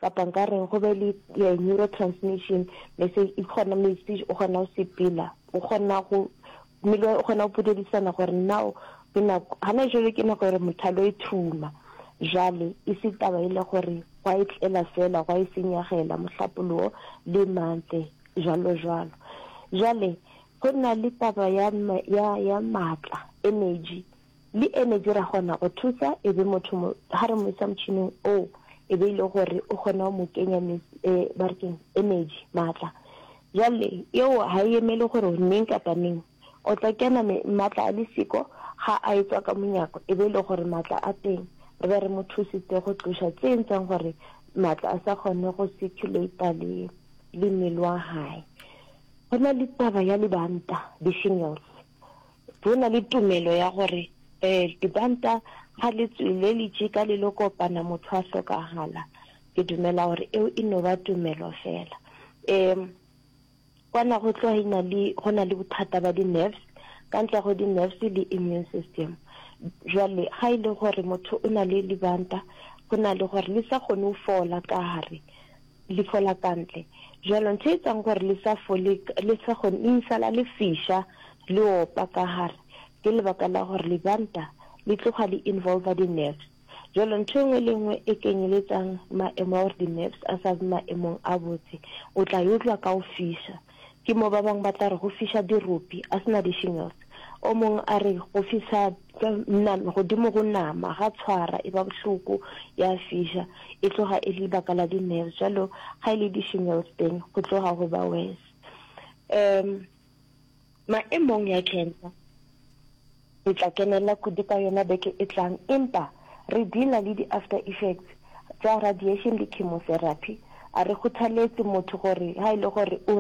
Kapa nka reng go be le neurotransmission message e kgona message o kgona go sepela o kgona go mmele o kgona go podelisana gore now ke nako hana jwale ke nako gore motho a lo ithuma jale e se taba ile gore go a etlela fela go a e senyagela mohlapologo le mantle jalo jalo jale go nna le taba ya ya ya matla energy Le energy ra kgona go thusa e be motho mo ha re mo isa motšhining o e be ile gore o kgona go mo kenya me e ba re keng energy matla jwale eo ha e emele gore neng kapa neng o tla kena me matla a le siko ga a e tswa ka monyako e be ile gore matla a teng re be re mo thusitse go tloša tse entseng gore matla a sa kgone go circulate le le mmele wa hae go na le taba ya libanta di shingles bo na le tumelo ya gore um libanta ga le tsweleletše ka le lo kopana motho a hlokagala. Ke dumela gore eo e no ba tumelo fela. Um kwana go tloga ina le go na le bothata ba di-nerves ka ntle go di-nerves le immune system jwale ga e le gore motho o na le libanta go na le gore le sa kgone go fola ka gare Leihlo la ka ntle. Bjalo, ntho e etsang gore le sa fole, le sa kgone, le isala le fiša, le opa ka gare, ke lebaka la gore libanta li tloga li involva di-nerves. Bjalo, ntho e nngwe le e nngwe e kenyeletsang maemo a gore di-nerves a sa be maemong a botse, o tla e utlwa ka go fiša. Ke mo ba bangwe ba tla re go fiša diropi, a se na di-shingles. O mongwe a re go fiša godimo go nama, ga tshwara, e ba bohloko, ya fiša, e tloga e le lebaka la di-nerves. Jalo ga e le di-shingles teng go tloga go ba worse. Um, maemong ya cancer, Re tla kenella kudu ka yona beke e tlang, empa re dealer le di after effects tša radiation le chemotherapy. A re kgothaletse motho gore ha e le gore o o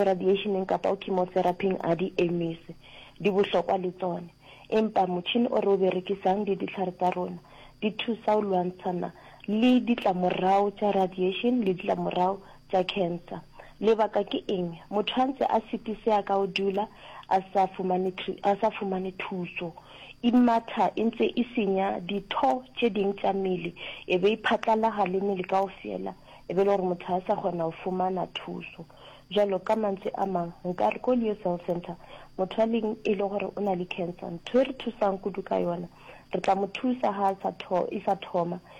radiation-eng kapa o chemotherapy-ing a di emise, di bohlokwa le tsone. Empa motšhini o re o berekisang le dihlare tsa rona di thusa ho lwantshana le ditlamorao tša radiation le ditlamorao tša khensa. Lebaka ke eng? Motho a ntse a sitisea ka go dula a sa fumane, a sa fumane thuso. Imatha e ntse e senya ditho tše ding tša mmele e be e phatlalaga le mmele kaofela e be e le gore motho a sa kgona go fumana thuso. Bjalo ka mantswe a mang, nka re ko Leo Cell Centre motho a leng e le gore o na le khensa, ntho e re thusang kudu ka yona, re tla mo thusa ga a sa tho, e sa thoma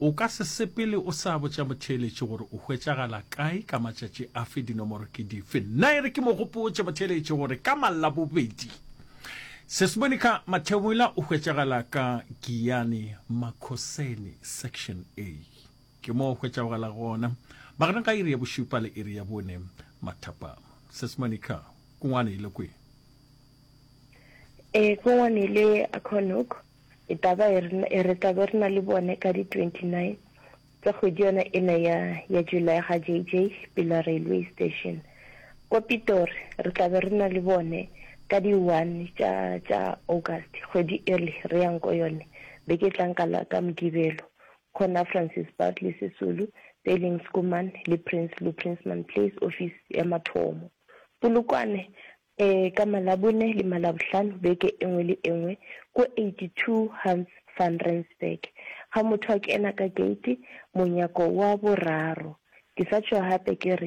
O ka se sepele o sa botša motheeletši gore o hwetšagala kae, ka matšatši afe, dinomoro ke dife. Nna e re ke mo gopotše motheeletši gore ka Mallabobedi, Sesmonica Mathebula o hwetšagala ka Giyani Makhoseni, Section A. Ke mo o hwetšagala gona magareng ga iri ya bošupa le iri ya bone mathapama. Sesmonica, Kungwane e le kwe? E, Kungwane e le Akhonoko. E taba e re, e re tla be re na le bone ka di 29 tsa kgwedi yona ena ya, ya July ga JJ Pila Railway Station. Kwa Pitori re tla be re na le bone ka di 1 tša, tša August, kgwedi ele re yang ko yone beke e tlang ka la, ka Mokibelo. Khona Francis Bartley Sisulu, Peiling Schoeman le Prinsloo Prinsman Place office ya mathomo. Polokwane Ee, ka Malabone le Malabohlano beke e nngwe le e nngwe, ko 82 Hans van Rensburg, ga motho a kena ka keiti, monyako wa boraro. Ke sa tšhoga gape ke re,